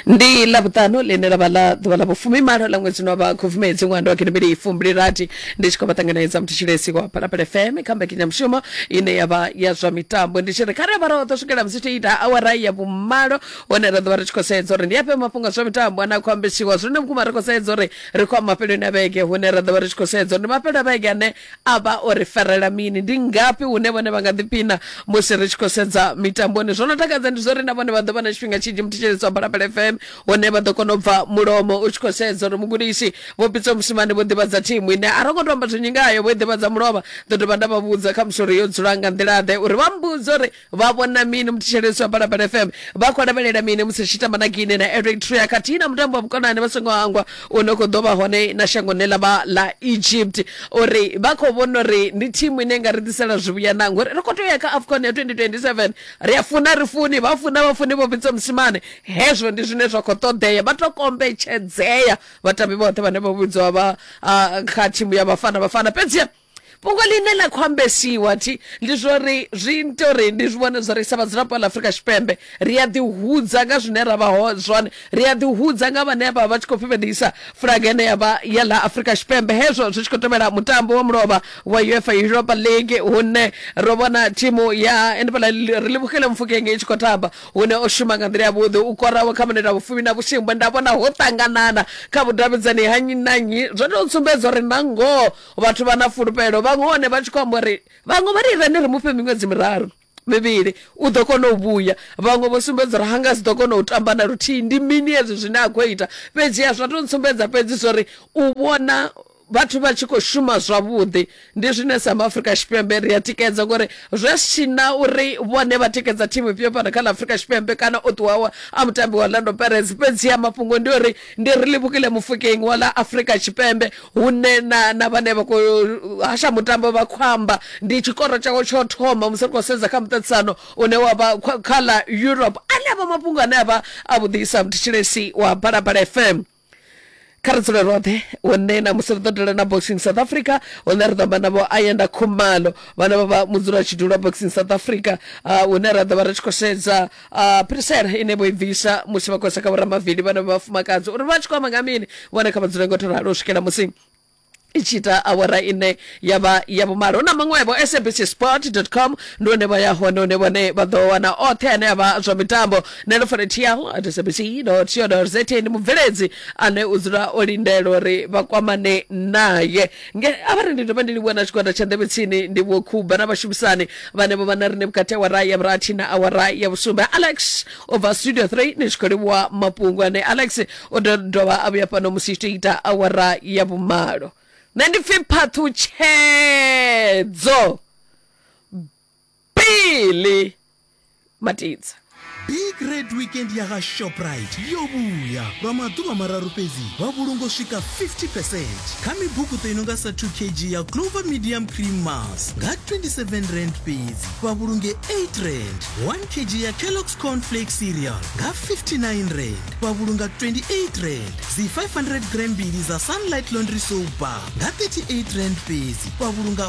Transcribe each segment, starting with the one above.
ndi ḽavhuṱanu ḽine ḽa vha ḽa ḓuvha ḽa vhufumimalo ḽa ṅwedzi wa vha khubvumedzi ṅwando wa gidimili ifumbili rathi ndi tshi khou vha ṱanganedza mutshilesi wa phalaphala fm kha mbekanyamushumo ine ya vha ya zwa mitambo ndi tshi ri kha ri avha roṱhe swikela musi tshi ita awara ya vhumalo hone ra ḓovha ri tshi khou sedza uri ndi afhe mafhungo a zwa mitambo ane a khou ambesiwa zwine vhukuma ri khou sedza uri ri khou a mafheloni a vhege hune ra ḓovha ri tshi khou sedza uri ndi mafhelo a vhege ane A vha o ri farela mini? Ndi ngafhi hune vhone vha nga ḓipina musi ri tshi khou sedza mitamboni? Zwo no takadza ndi zwo ri na vhone vha ḓo vha na tshifhinga tshinzhi muthetshelesi wa Phalaphala FM hune vha ḓo kona u bva mulomo u tshi khou sedza uri mugudisi Vho Pitso Mosimane vho ḓivhadza thimu ine a ro ngo tou amba zwinzhi ngayo vho i ḓivhadza mulovha. Ndo dovha nda vha vhudza khamusi uri yo dzula nga nḓila-ḓe uri vha mbudze uri vha vhona mini muthetshelesi wa balabala fm vha khou lavhelela mini musi tshi tamba na gine na eritrea khathihi na mutambo wa vhukonani vha songo hangwa u no khou ḓo vha hone na shangoni ḽa vha ḽa egypt uri vha khou vhona uri ndi thimu ine nga ri ḓisela zwivhuya na ngori ri khou tea u ya kha afcon ya 2027 ri a funa ri funi vha funa vha funi vho vhidza musimane hezwo ndi zwine zwa khou ṱoḓea vha to kombetshedzea vhatambi vhoṱhe vhane vha vhidzwa vha ah, kha thimu ya vhafana vhafana fhedziha fhungo ḽine ḽa khou ambesiwa thi ndi zwo ri zwi ita uri ndi zwi vhone zwo ri sa vhadzulapo ḽa afurika tshipembe ri a ḓihudza nga zwine ra vha ho zwone ri a ḓihudza nga vhane vha vha tshi khou fhifhedisa flag ene ya vha ya ḽa afurika tshipembe hezwo zwi tshi khou tevhela mutambo wa mulovha wa uefa europa league hune ro vhona thimu ya enefhala ri livhukele mufukenge i tshi khou tamba hune o shuma nga nḓila yavhuḓi u koraho kha mineta vhufumi na vhusimbwe nda vhona ho ṱanganana kha vhudavhidzani ha nnyi na nnyi zwo tou sumbedza uri na ngoho vhathu vha na fulufhelo vhaṅwe hone vha tshi khou amba uri vhaṅwe vha ri irani ri mufhe miṅwedzi miraru mivhili u ḓo kona u vhuya vhaṅwe vho sumbedza uri hanga si ḓo kona u tamba na luthihi ndi mini hezwi zwine a khou ita fhedzi a zwa to ntsumbedza fhedzi zwori u vhona vhathu vha tshi khou shuma zwavhuḓi ndi zwine south africa tshipembe ri a tikedza ngori zwe tshina uri vhone vha tikedza thimu ifhio fhano kha ḽa afrika tshipembe kana o ṱuwawa a mutambi wa orlando perez fhedzi ya mafhungo ndi uri ndi ri livhukile mufukeng wa ḽa afrika tshipembe hune na na vhane vha khou hasha mutambo vha khou amba ndi tshikoro tshawe tsho thoma musi ri khou sedza kha muṱaṱisano une wa vha khwa- kha ḽa europe ane avha mafhungo ane avha a vhuḓisa mthetshelesi wa balabala fm kha ri dzule roṱhe hune na musi ri ḓo dela na boxing south africa hune ri ḓo amba navho ayenda khumalo vhane vha vha mudzula tshidulo boxing south africa ah, hune ra ḓo vha ri tshi khou sedza uh, pirisela ine vho i bvisa musi vha khou seka vhoramavili vhana vha vhafumakadzi uri vha tshi khou amba nga mini vhone kha vha dzule ngo to ralo u swikela musi i tshi ita awara ine ya vha ya vhumalo hu na maṅwevho sabc sport com ndi hone vha ya hone hune vhone vha ḓo wana oṱhe ane a vha zwa mitambo nelo fanetial at sabc co za ndi mubveledzi ane u dzula o lindela uri vha kwamane naye nge a vha ri ndi dovha ndi livhuwa na tshigwada tsha ndevhe tsini ndi vho khuba na vhashumisani vhane vho vha na rine vhukati awara ya vhurathi na awara ya vhusumbe alex o bva studio 3 ni tshi khou livhuwa mafhungo ane alex o do dovha a vhuya fhano musi tshi ita awara ya vhumalo nṋe ndi pfi phaṱhutshedzo pele matidza big red weekend ya ga shoprite yo vhuya lwa maḓuvha mararu fhedzi vha vhulungo swika 50 percent kha mibukuṱo i nonga sa 2 kg ya clover medium cream mas nga 27 rand fhedzi vha vhulunge 8 rand 1 kg ya kellogs cornflake cereal nga 59 rand vha vhulunga 28 rand dzi 500 gram mbili za sunlight laundry soap bar nga 38 rand fhedzi vha vhulunga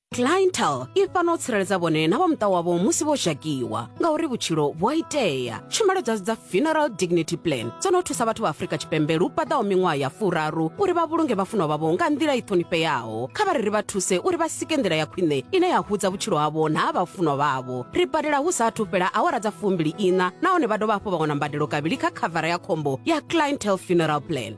clientel i fana u tsireledza vhone na vha muṱa wavho musi vho zhakiwa ngauri vhutshilo vhu a itea tshumelo dzashu dza funeral dignity plan dzo no thusa vhathu vha afrika tshipembe lu paḓaho miṅwaha ya furaru uri vha vhulunge vhafunwa vhavho nga nḓila i ṱhonifheaho kha vha ri ri vha thuse uri vha sike nḓila ya khwine ine ya hudza vhutshilo havho na ha vhafunwa vhavho ri badela hu sa athu fhela awara dza fumbili iṋa nahone vha dovha hafhu vha wana mbadelo kavhili kha khavara ya khombo ya clientel funeral plan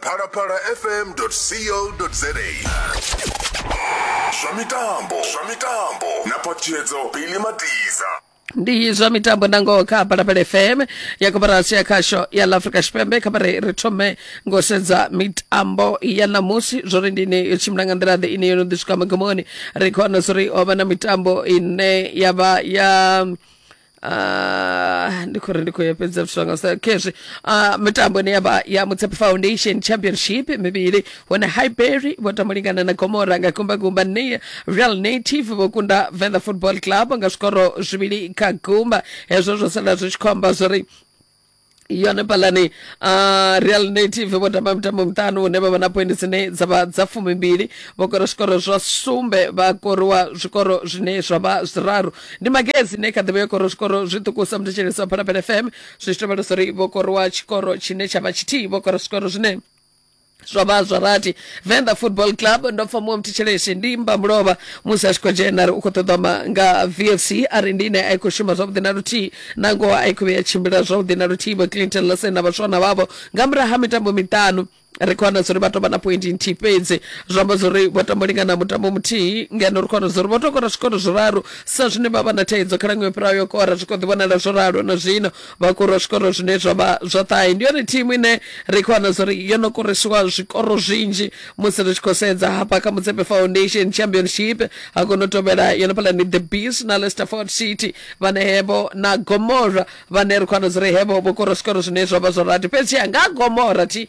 phalaphala fm co za zwa mitambo zwa mitambo na ṱhalutshedzo bili madiza ndi zwa mitambo nangoho kha phalaphala fm ya koporasi ya khasho ya la afrika tshipembe kha vhare ri thome ngo sedza mitambo ya ṋamusi zwo ri ndi ine yo tshimbila nga nḓila ḓe ine yo no ḓi swika magomoni ri khou wana zwo ri ho vha na mitambo ine ya vha ya Ah, ndi khou ri ndi khou ya fhedza zwithu zwanga sa khezwi ah, mitambo ine yavha ya mutsepe foundation championship mivhili hone highbury vho tamba lingana na gomora nga gumbagumba ne real native vho kunda venda football club nga zwikoro zwivhili kha gumba hezwo zwo sala zwi tshi khou amba zwori iyo hanefhaḽa ni uh, real native vho tamba mitambo miṱanu hune vha vha na poindi dzine dza vha dza fumimbili vho kora zwikoro zwa sumbe vha koriwa zwikoro zwine zwa vha zwiraru ndi magezi ine kha ḓivha yo kora zwikoro zwiṱukusa muthetshelesi wa phalaphala fm zwi tshi tovhalesa uri vho koriwa tshikoro tshine tsha vha tshithihi vho kora zwikoro zwine zwa vha zwa rathi venḓa football club ndo pfa muṅwe mthetshelesi ndi mba mulovha musi a tshi khou dzhena ri u khou ṱoḓa ma nga vfc a ri ndi ine a i khou shuma zwavhuḓi na luthihi na ngoho a i khou vhuya tshimbila zwavhuḓi na luthihi vho clinton lasen na vhaswana vhavho nga murahu ha mitambo miṱanu ri khou wana zwauri vha tou vha na pointi nthihi fhedzi zwi amba zwauri vho tambo lingana mutambo muthihi ngeno ri khou wana zwauri vho tou kora zwikoro zwiraru sa zwine vha vha na thaidzo kha lango yo fhiraho yo kora zwi khou ḓi vhonala zwo ralo na zwino vha kura zwikoro zwine zwa vha zwa ṱahe ndi yone thimu ine ri khou wana zwori yo no koresiwa zwikoro zwinzhi musi ri tshi khou sedza hafha kha mutsepe foundation championship ha kono tovhela yone phala ni the beast na leicester ford city vhane hevho na gomora vhane ri khou wana zwori hevho vho kora zwikoro zwine zwa vha zwa rati fhedzi nga gomora thi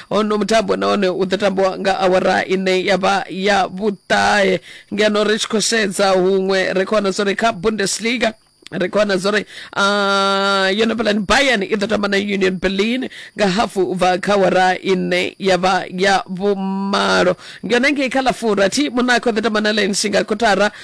hono mutambo nahone u ḓo tambiwa nga awara ine ya vha ya vhuṱahe ngeno ri tshi khou sedza huṅwe ri khou wana zwo ri kha bundesliga ri khou wana zwo ri ah, yo no vhelani bayern i ḓo tamba na union berlin nga hafu u bva kha awara ine ya vha ya vhumalo ngeno ngei kha ḽa furathi monaco ḓo tamba na lensinga kotara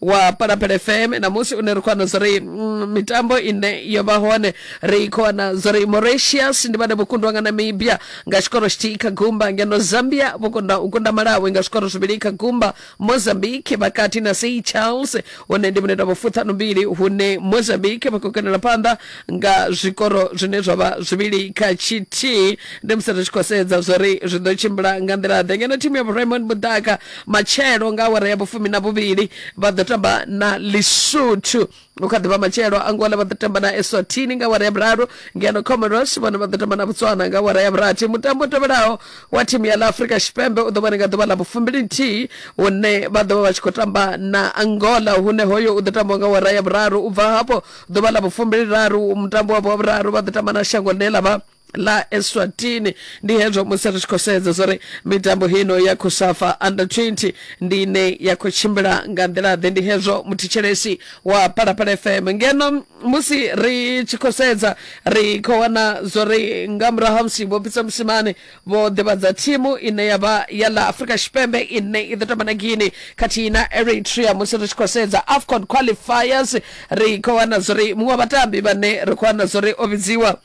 wa palapele fm namusi une ri khou wana zwori mm, mitambo ine yo vha hone ri khou wana zwori mauritius ndi vhane vho kundwa nga namibia nga tshikoro tshithihi kha gumba ngeno zambia vho kunda u kunda malawi nga zwikoro zwivhili kha gumba mozambique vhakati na sei charles hune ndi mineta vho fuṱhanu mbili hune mozambique vha khou kenela phanḓa nga zwikoro zwine zwa vha zwivhili kha tshithihi ndi musi ri tshi khou sedza zwo ri zwi ḓo tshimbila nga nḓila ḓe ngeno thimu ya vhuraimoni mudaka matshelo nga awara ya vhufumi na vhuvhili vha ḓo tamba na lisuthu u kha ḓivha matshelo angola vha ḓo tamba na eswatini nga awara ya vhuraru ngeno comoros vhone vha ḓo tamba na botswana nga awara ya vhurathi mutambo u tevhelaho wa thimu ya ḽa afurika tshipembe u ḓo vhone nga ḓuvha ḽa vhufumbili nthihi hune vha ḓo vha vha tshi khou tamba na angola hune hoyo u ḓo tambiwa nga awara ya vhuraru u bva hafho ḓuvha ḽa vhufumbili-raru mutambo wavho wa vhuraru vha ḓo tamba na shango ḽine ḽa vha ḽa eswatini ndi hezwo musi ri tshi khou sedza zwo ri mitambo hino ya khosafa under 20 ndi ine ya khou tshimbila nga nḓila-ḓe ndi hezwo muthetshelesi wa palapala fm ngeno musi ri tshi khou sedza ri khou wana zwo ri nga murahu ha musi vho pfisa musimane vho ḓivhadza thimu ine ya vha ya ḽa afrika tshipembe ine i ḓo tamba na guine khathihi na eritrea musi ri tshi khou sedza afcon qualifiers ri khou wana zwo ri muṅwe wa vhatambi vhane ri khou wana zwo ri o vhidziwa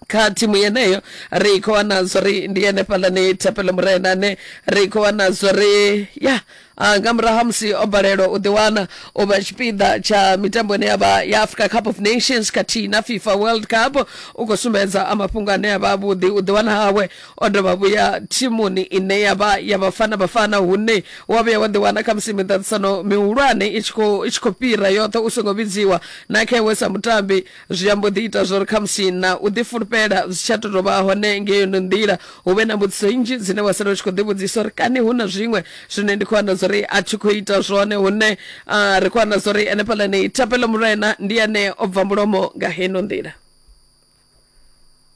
kha thimu yeneyo ri khou wana zwo ri ndi ene fhaḽani thapelo murena ane ri khou wana zwo ri ya A nga murahu ha musi o balelwa u ḓiwana o vha tshipiḓa tsha mitambo ine ya vha ya Africa Cup of Nations khathihi na FIFA World Cup u khou sumbedza a mafhungo ane a vha avhuḓi u ḓiwana hawe o dovha vhuya thimuni ine ya vha ya Bafana Bafana hune wa vhuya wa ḓiwana kha musi miṱaṱisano mihulwane i tshi khou i tshi khou fhira yoṱhe u songo vhidziwa na kha iwe sa mutambi zwi ambo ḓi ita zwori khamusi na u ḓi fulufhela zwi tsha to vha hone ngeyo no nḓila hu vhe na mbudziso nnzhi dzine wa sala u tshi khou ḓivhudzisa uri kani hu na zwiṅwe zwine ndi khou wana zwori a thi khou ita zwone hune uh, ri khou wana zwori henefhaḽa ni thapelo mulwena ndi ane o bva mulomo nga heno nḓila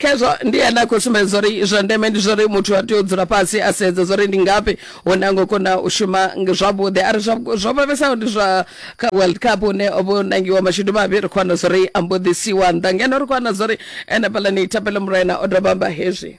khezwo ndi ene a khou sumbedza uri zwa ndeme ndi zwori muthu a tea u dzula fhasi a sedza zwori ndi ngafhi hune a ngo kona u shuma zwavhuḓi a ri zwo vhavhesaho ndi zwa kha world cup hune o vho nangiwa mashudu mavhi ri khou wana zwori a mbo ḓi siwa nnḓa ngeno ri khou wana zwori ene fhaḽani thapelo murena o dovha amba hezwi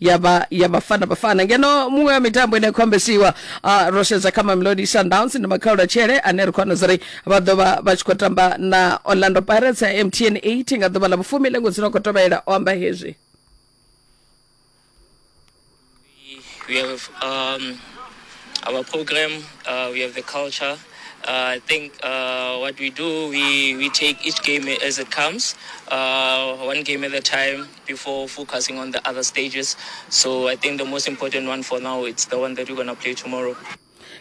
ya vha ya vhafana vhafana ngeno muṅwe wa mitambo ine ya khou ambesiwa uh, ro sedza kha mamelodi sundowns ndi makhaula tshele ane ri khou wana zuri vha ḓo vha vha tshi khou tamba na orlando pirates ya mtn 8 nga ḓuvha ḽa vhufumi lengo dzino khou tovhela o amba hezwi we have um, our program, uh, we have the culture. Uh, I think uh, what we do, we, we take each game as it comes, uh, one game at a time. before focusing on the other stages. So I think the most important one for now it's the one that we're gonna play tomorrow.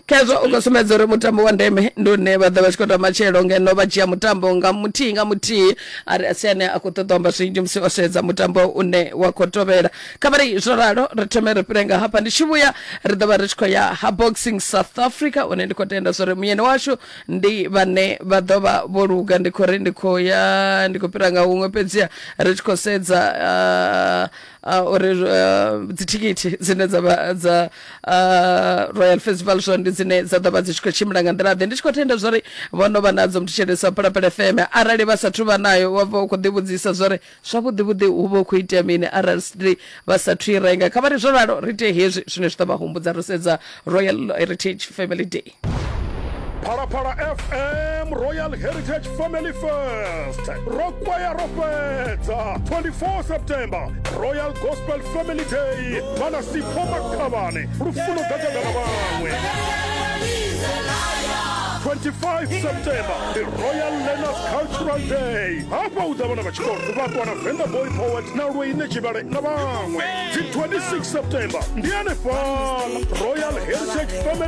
khezwo u khou sumbedza uri mutambo wa ndeme ndi une vha ḓo vha tshi khou tamba tshelo ngeno vha dzhia mutambo nga muthihi nga muthihi a ri asi ane a khou ṱoḓa amba zwinzhi musi o sedza mutambo une wa khou tovhela kha vha ri zwo ralo ri thome ri fhire nga hafha ndi tshi vhuya ri ḓo vha ri tshi khou ya ha boxing south africa une ndi khou tenda zwo ri muyeni washu ndi vhane vha ḓo vha vho luga ndi khou ri ndi khou ya ndi khou fhira nga huṅwe fhedziha ri tshi khou sedza ah, ah, uri ah, dzithikithi dzine dza vha dza ah, royal festival zwo ndi dzine dza ḓo vha dzi tshi khou tshimbila nga nḓila ḓe ndi tshi khou tenda zwori vho no vha nadzo muthu tshelesa phalaphala fm arali vha sathu vha nayo wa vha u khou ḓivhudzisa zwori Zwavhuḓi-vhuḓi hu vha hu khou itea mini arali Sydney vha sa thu i renga? Kha vha ri zwo ralo ri ite hezwi zwine zwi ḓo vha humbudza ro sedza Royal Heritage Family Day. Phalaphala FM Royal Heritage Family Fest ro kwaya ro fhedza 24 September Royal Gospel Family Day vhana Sipho Makhavhane lufuno ḓa ḓa na vhaṅwe 25 September the royal learners cultural day hafha u ḓa vhana vha tshikolo vha ṱuwa na venga boy poet na lweine tshivhale na vhaṅwe dzi 26 september ndi hanefhala royal heritage family